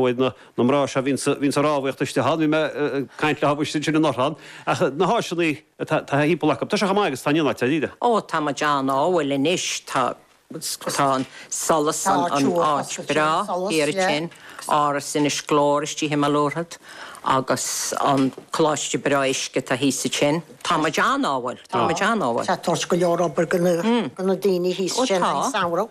bhfad na mná seo bhíonn sa bhíonn sa rámhaíocht istigh ann bhí mé ag caint le hámh sin ann orthu ann ach na háiseanna atá timpeall acu tá sé chomh maith agus tá an ionáid tá ó tá muid ann á bhfuil anois tá tá an solas an an áit breá in Áras Inis Gluaire istigh i mBéal an Mhuirthead agus an coláiste breá uisce tá thíos ansin tá muid ann á bhfuil tá muid ann á bhfuil tá toirt go leor obair do na do na daoine thíos ansin sa samhradh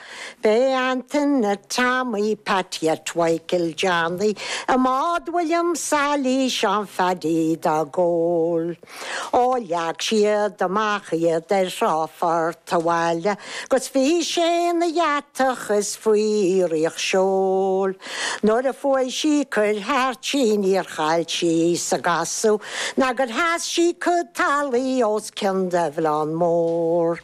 Beidh Antaine Tommy, Paidí Mhichael Johnny i mbád William Sailí is Seán Phaddy dá gcúl. Ó leag siad amach iad ar thrá Phort a' Bhaile 'gus bhí sé ina dheatach is faoi iarracht seoil, Nuair a chuaigh sí cur thart níor chaill sí sa gcasadh nó gur sheas sí cuid talaimh os cionn Duibhoileán Mór.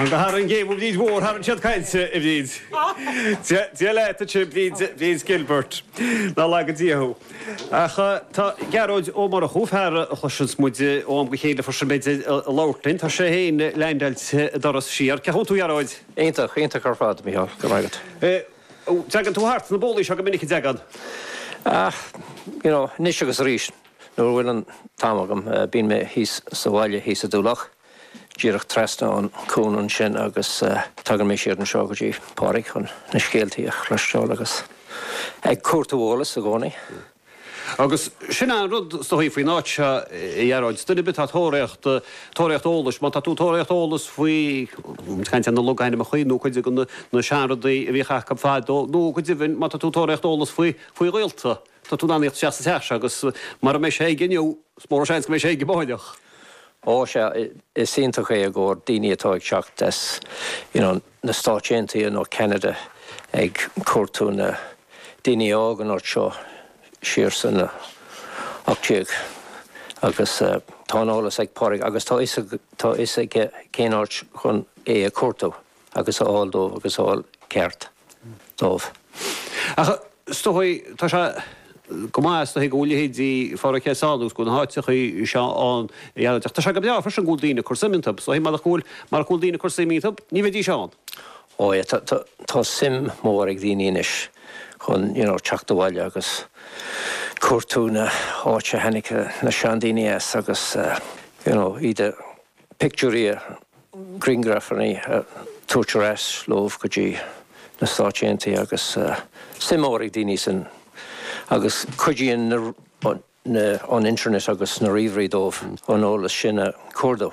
An go hard an géabhadh Bríd Mhór thar an chéad caillte a Bhríd. Dia leat a Tigh Bríd Bríd Gilbert. Ná lag go dtí thú. Ach tá Gearóid Ó Murchú, fear a chloiseanns muid ó am go chéile freisin beidh muid ag labhairt linn. Tá sé fhéin leaindeáilte in Turas Siar. Cén chaoi a bhfuil tú Gearóid? Iontach, iontach ar fad, Micheál. Go raibh maith agat. Teagann tú thart sna bólaí seo go minic, an dteagann? Ach, you know, anois agus arís nuair atá an t-am agam, bíonn mé thíos sa bhaile thíos i dTulach, díreach trasna an cuan ansin agus tagann mé siar anseo go dtí Pádraig chun na scéaltaí a chloisteáil agus ag cuartú eolas i gcónaí. Agus sin an rud is dóigh faoin áit seo, a Ghearóid. Duine ar bith atá tóraíocht, tóraíocht eolais, má tá tú tóraíocht eolais faoi caint ar na logainmeacha nó cuid de na seanrudaí a bhíodh acu fadó, nó go deimhin má tá tú tóraíocht eolais faoi faoi ghaolta, tá tú in ann tíocht isteach sa teach seo agus mura mbeidh sé aige inniu, is mór an seans go mbeidh sé aige amárach. Ó sea, is iontach é i gcomhair daoine atá ag teacht as, you know, an. na Stáit Aontaithe nó Ceanada ag cuartú na daoine a d'fhág an áit seo siar sna 18 agus tá an eolas ag Pádraig agus tá tá fhios aige cén áit chun é a cuartú agus a fháil dóibh agus a fháil ceart dóibh. Ach Is dóigh, tá sé go maith is dóigh go bhfuil leithéidí Phádraic seo ann agus go bhfuil na háiteachaí seo ann ar bhealach. Tá sé go breá freisin go bhfuil daoine ag cur suim iontub. Is dóigh, marach go bhfuil, marach go bhfuil daoine ag cur suim iontub, ní bheidís ann. Ó yeah, tá, tá, tá suim mór ag daoine anois chun, you know, teacht abhaile agus cuartú na h-áite a tháinig na seandaoine as agus, you know, iad a, pictiúirí a, griangrafanna a tabhairt ar ais leofa go dtí na Stáit Aontaithe agus suim mór ag daoine ansin agus cuidíonn an internet agus na ríomhairí dóibh an eolas sin a cuartú